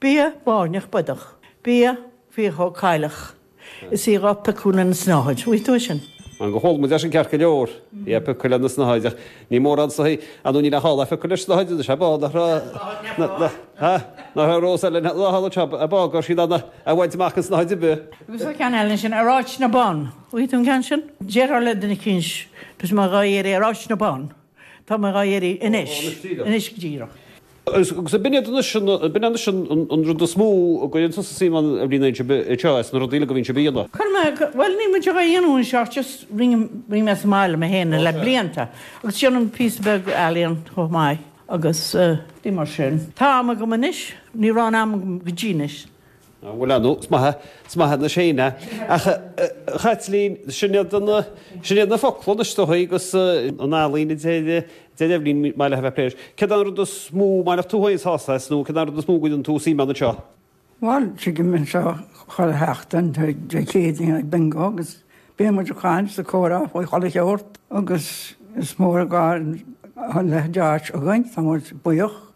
Bia báirneach bodach. Bia faochóg cailleach. Is í rota cúnna na snáthaid. Bhí tú é sin. An go hól muid leis an cearc go leor. Yep, i cuile na snáthaid, ach ní mórán sa thaobh. An ú ní le hál a phiocadh leis an snáthaid, is é bá nach raibh na, na, ha? nach raibh rós eile na, na hál atá a bá gur siad ann a, a bhaint amach an snáthaid ar bith. Agus an ceann eile sin, ar áit na mbonn. Bhí tú an ceann sin? Déarfá le duine eicínt, tá mé dhá iarraidh ar áit na mbonn. Tá mé dhá iarraidh anois. Anois go díreach. Agus b'in iad anois, b'in anois an rud is mó a gcuireann tusa suim ann bhuel anseo anseo, as na rudaí uilig a bhíonn sibh a dhéanamh. Chuir mé, bhuel níl muid a dhéanamh anseo ach just rinne, rinne mé sa mbaile mé féin le blianta agus déanaim píosa beag ealaíon chomh maith agus rudaí mar sin. Tá am agam anois, ní raibh an am agam go dtí anois. bhfuil ann, is maith é, is maith é na séine. Ach, Chaitlín, sin iad na, sin iad na focla anois is dóichí agus an ealaín a deir Eibhlín is maith léi a bheith ag plé leis. Céard an rud is mó, maith leat tú féin sásamh as nó céard an rud is mó a gcuireann tusa suim ann anseo? Bhuel, tigim anseo chuile sheachtain tá Dé Céadaoin ag bingo agus bíonn muid ag caint is ag comhrá faoi chuile shórt agus is mór an gar a leithéid d'áit againn, tá muid buíoch.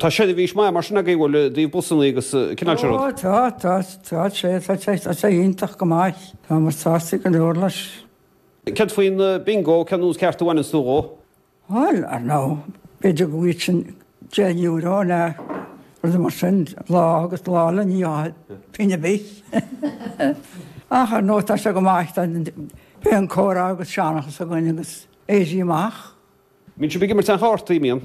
Tá seirbhís maith mar sin agaibh an bhfuil ó thaobh busanna agus an cineál sin rud. Tá, tá, tá, tá, tá, tá sé iontach go maith. Táimid sásta go leor leis. Céard faoin bingo, cén nós ceart a bhaineanns tú dhó? Bhuel, ar ndóigh, b'fhéidir go bhfaighinn deich euro nó rud mar sin lá agus lá eile ní bhfaighinn pingin ar bith. Ach ar ndóigh, tá sé go maith, tá beidh an comhrá agus seanchas againn agus éirí amach. Bíonn sibh ag imirt chártaí, an mbíonn.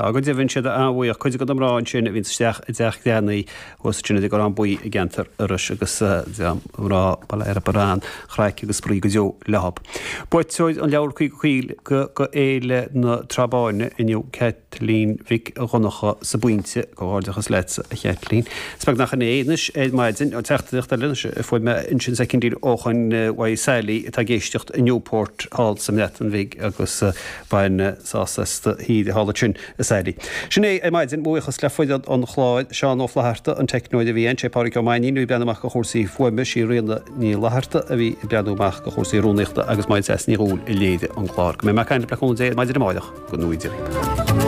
Tá go deimhin is iad an-bhuíoch cuid de na mná ansin a bhíonn isteach i dTeach Greannaí thuas ansin ar an gCorrán Buí i gceantar Iorrais agus mná Baile Air a mbaineann craic agus spraoi go deo leothab. Buaiteoir an leabhair Caoga Coill go Fhéile na Trá Báine inniu Caitlín Mhic Dhonnacha sa bPointe. Comhghairdeachas leat a Chaitlín. Is beag nach sin é anois ar maidin an teachtaireacht eile anois a fuair mé ansin sa Kindle ó Choin Mhaigh Sailí atá ag éisteacht i Newport thall sa mBreatain Bhig agus bhain sásamh as do thír thall ansin a Sailí. Sin é ar maidin, mo bhuíochas le foireann an chláir, Seán Ó Flaithearta an teicneoir a bhí ann, sé Pádraig Ó Mainnín a bhí ag breathnú amach ar chúrsaí fuaime, sí Ríona Ní Fhlatharta a bhí ag breathnú amach ar chúrsaí rúnaíochta agus Máirín Seas Ní Dhúill a léirigh an clár. Go mbeidh mé ag caint libh le cúnamh Dé ar maidin amárach go ngnóthaí Dia.